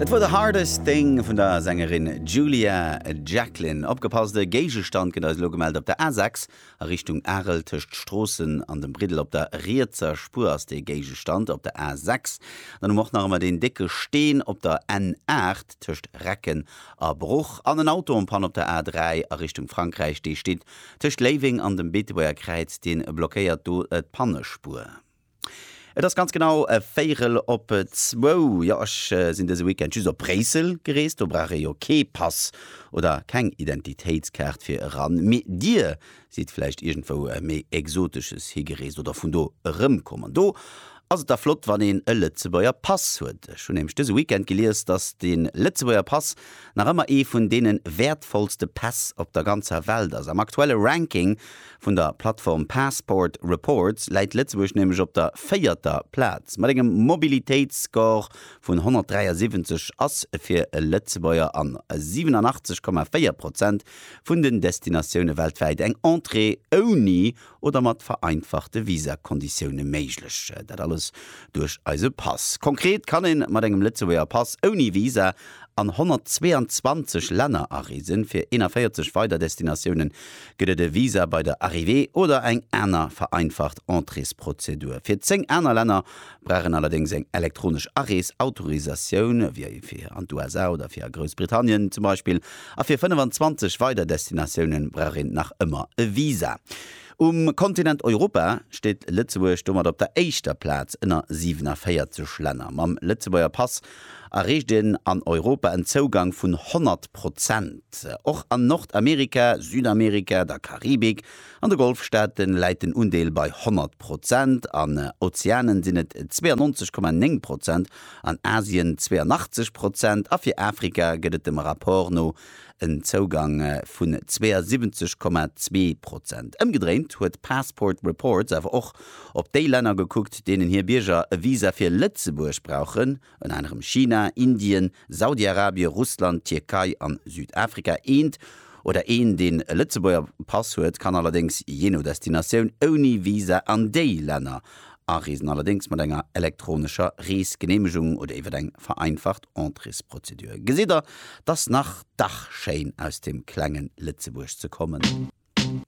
Dat wor The Hardest Thing vun der Sängerin Julia Jacklin. Opgepasst, e Géigestand gëtt eis elo gemellt op der A6 a Richtung Arel. Tëscht Stroossen an dem Briddel op der rietser Spuer ass dee Géigestand op der A6. Dann hu mer och nach ëmmer deen décke Steen op der N8 tëscht Recken a Bruch. An en Auto en Panne op der A3 a Richtung Frankräich. Dee steet tëscht Léiweng an dem Beetebuerger Kräiz, dee blockéiert do d'Pannespuer. Et ass ganz genau e Véirel op zwou. Jo, ech sinn dëse Weekend just op Bréissel gereest, do brauch ee jo kee Pass oder keng Identitéitskaart fir eran. Mee Dir sidd vläicht iergendwou méi Exotesches higereest oder vun do erëmkomm. An do ass et da flott, wann een e Lëtzebuerger Pass huet. Ech hunn nämlech dëse Weekend gelies, datt de Lëtzebuerger Pass nach ëmmer ee vun deene wäertvollste Päss op der ganzer Welt ass. Am aktuelle Ranking Vun der Plattform Passport Reports läit Lëtzebuerg nämlech op der véierter Plaz. Mat engem Mobilitéitsscore vun 173 ass fir e Lëtzebuerger an 87,4 Prozent vun den Destinatioune weltwäit eng Entrée ouni oder mat vereinfachte Visakonditioune méiglech. Dat alles duerch eise Pass. Konkret kann ee mat engem Lëtzebuerger Pass ouni Visa an 122 Länner areesen, fir 41 weider Destinatioune Gëtt et e Visa bei der Arrivée oder eng aner vereinfacht Entréesprozedur? Fir 10 aner Länner brauch een allerdéngs eng elektronesch Arees-Autorisatioun, ewéi fir an d'USA oder fir a Groussbritannien zum Beispill. A fir 25 weider Destinatioune brauch een nach ëmmer e Visa. Um Kontinent Europa steet Lëtzebuerg domat op der éischter Plaz ënner 47 Länner mam Lëtzebuerger Pass. erreecht een an Europa en Zougang vun 100 Prozent. Och an Nordamerika, Südamerika, der Karibik an de Golfstaate läit den Undeel bei 100 Prozent, an Ozeanen sinn et 92,9 Prozent, an Asien 82 Prozent a fir Afrika gëtt et dem Rapport no en Zougang vun 72,2 Prozent. Ëmgedréint huet Passport Reports awer och op déi Länner gekuckt, deenen hir Bierger e Visa fir Lëtzebuerg brauchen, ënner anerem China, Indien, Saudi-Arabien, Russland, d'Tierkei an Südafrika. Eent oder een, deen e Lëtzebuerger Pass huet, kann allerdéngs jee no Destinatioun ouni Visa an déi Länner areesen, allerdéngs mat enger elektronescher Reesgeneemegung oder iwwer eng vereinfacht Entréesprozedur. Gesitt der, 't ass nach dach schéin aus dem klengen Lëtzebuerg ze kommen.